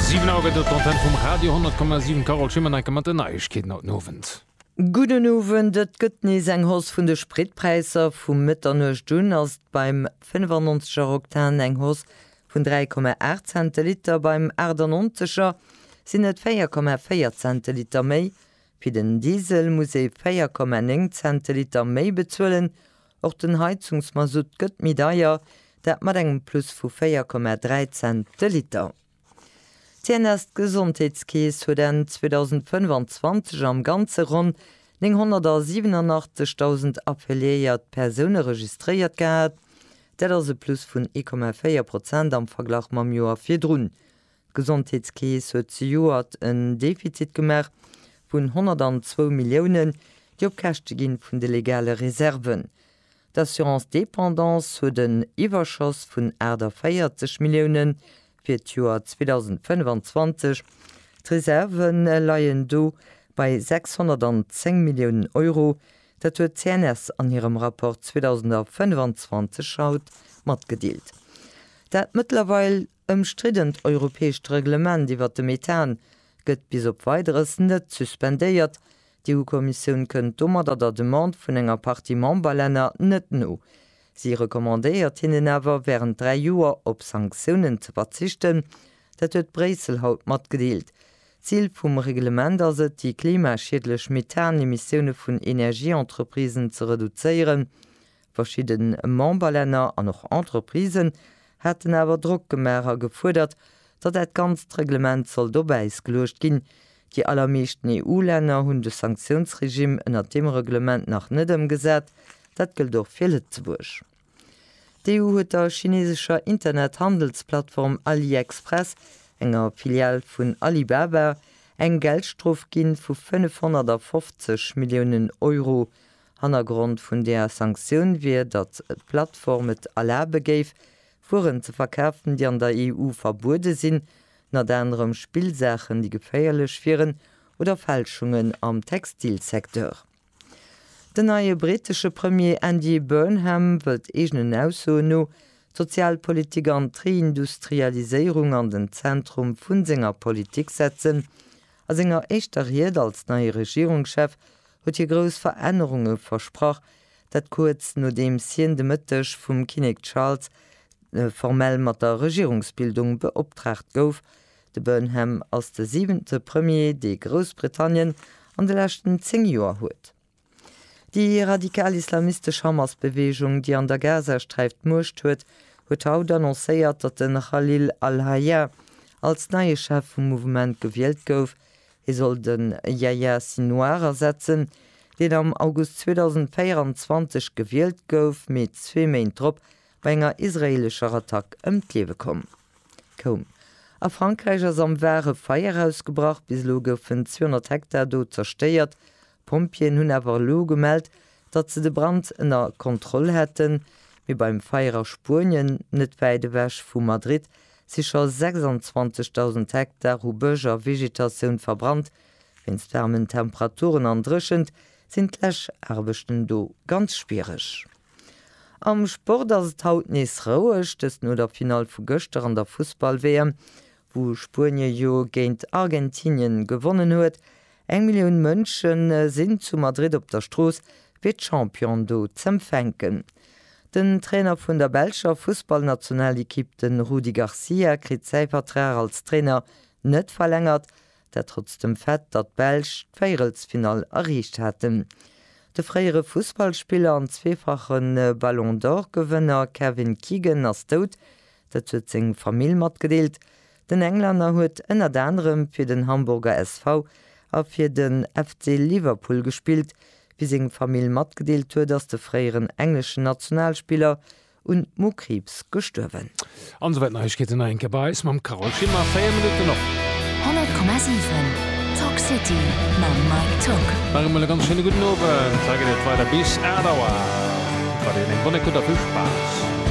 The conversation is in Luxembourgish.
Siwen Auer gëtt et, d'Antenne vum Radio 10,7. D'Carole Schimmer, Enke mat den Neiegkeeten haut den Owend. Gudden Owend. Et gëtt nees eng Hausse vun de Spritpräisser. Vu Mëtternuecht un ass et beim 95 er Oktan eng Hausse vun 3,8 Cent de Liter, beim 98 er sinn et 4,4 Cent de Liter méi. Fir den Diesel muss ee 4,9 Cent de Liter méi bezuelen, Och den Heizungsmasutt gëtt méi deier, dat mat engem Plus vu 4,3 Cent de Liter. D'CNS, d'Gesondheetskeess, huet Enn 2025 am Ganze ronn 987.000 affiliéiert Persoune registréiert gehat. Dat ass e Plus vun 1,4 Prozent am Verglach mam Joer virdrun. D'Gesondheetskeess huet zejoert en Defizit gemaach vun 102 Milliounen, déi op Käschte gi vun de legale Reserven. D'Assurance dépendance huet en Iwwerschoss vun 48 Milliounen fir d'Joer 2025. D'Reserve leien do bei 610 Milliounen Euro, dat huet d'CNS an hirem Rapport 2025 haut matgedeelt. Dat mëttlerweil Ëmstriddent europäescht Reglement iwwert de Methan gëtt bis op Weideres net suspendéiert. D'EU-Kommissioun kënnt domadder der Demande vun enger Partie Memberlänner net no. Si recommandéiert hinnen awer, wärend dräi Joer op Sanktiounen ze verzichten. Dat huet Bréissel haut matgedeelt. D'Zil vum Reglement ass et, déi klimaschiedlech Methan-Emissioune vun Energieentreprisen ze reduzéieren. Verschidde Memberlänner an och Entreprisen haten awer Drock gemaach a gefuerdert, datt dat ganzt Reglement sollt op Äis geluecht ginn. Déi allermeeschten EU-Länner hunn de Sanktiounsregimm ënnert deem Reglement nach net ëmgesat. Dat gëllt och fir Lëtzebuerg. D'EU huet der chineesescher Internet-Handelsplattform AliExpress, enger Filial vun Alibaba, eng Geldstrof ginn vu 550 Milliounen Euro. Hannergrond vun där Sanktioun wier, datt d'Plattform et erlabe géif, Wueren ze verkafen, déi an der EU verbuede sinn, ënnert anerem Spillsaachen, déi geféierlech wieren, oder Fälschungen am Textilsecteur. Den neie brittesche Premier Andy Burnham wëllt eegenen Aussoen no d'Sozialpolitik an d'Reindustrialiséierung an den Zentrum vu senger Politik setzen. A senger éischter Ried als neie Regierungschef huet hie grouss Verännerunge versprach, dat kuerz nodeems hien de Mëtteg vum Kinnek Charles formell mat der Regierungsbildung beoptraagt gouf. De Burnham ass de siwente Premier, dee Groussbritannien an de leschten 10 Joer huet. Déi radikal islamistesch Hamas-Beweegung, déi an der Gazasträif d'Muecht huet, huet haut annoncéiert, datt de Khalil al-Hayya als neie Chef vum Mouvement gewielt gouf. Hie soll de Yahya Sinouar ersetzen, deen am August 2024 gewielt gouf, mee zwee Méint drop bei enger israeelescher Attack ëm d'Liewe komm. A Frankräich ass am Var e Feier ausgebrach. Bis elo goufen 200 Hektar do zerstéiert, D'Pompjeeën hunn awer elo gemellt, datt se de Brand ënner Kontroll hätten. Mee beim Feier a Spuenien, net wäit ewech vu Madrid, si scho 26.000 Hektar hu Bësch a Vegetatioun verbrannt. Wéinst waarmen Temperaturen an Dréchent sinn d'Läschaarbechten do ganz schwiereg. Am Sport ass et haut nees roueg, dëst no der Finall vu gëschter an der Fussball-WM. wou Spuenie jo géint Argentinien gewonnen huet, eng Millioun Mënschen sinn zu Madrid op der Strooss fir d'Champion do z'empfänken. Den Trainer vun der belscher Fussballnationalekipp, den Rudi Garcia kritt säi Vertrag als Trainer net verlängert, Dat trotz dem Fait, datt d'Belsch d'Véierelsfinall erreecht haten. De fréiere Fussballspiller an zweefache Ballon d'Or-Gewënner Kevin Keegan ass dout. Dat huet seng Famill matgedeelt. Den Englänner huet ënnert anerem fir den Hamburger SV a fir de FC Liverpool gespillt. Wéi seng Famill matgedeelt huet, ass de fréieren engleschen Nationalspiller un Mokriibs gestuerwen. An esou wäit Neiegkeeten nach eng Kéier bei eis mam Carole Schimmer, 4 Minutten op. 100,7 Talk City mam Mike Tock. Nach eemol e ganz schéine gudden Owend. Hei geet et weider bis 8 Auer. Wat een eng Bonne Écoute a vill Spaass!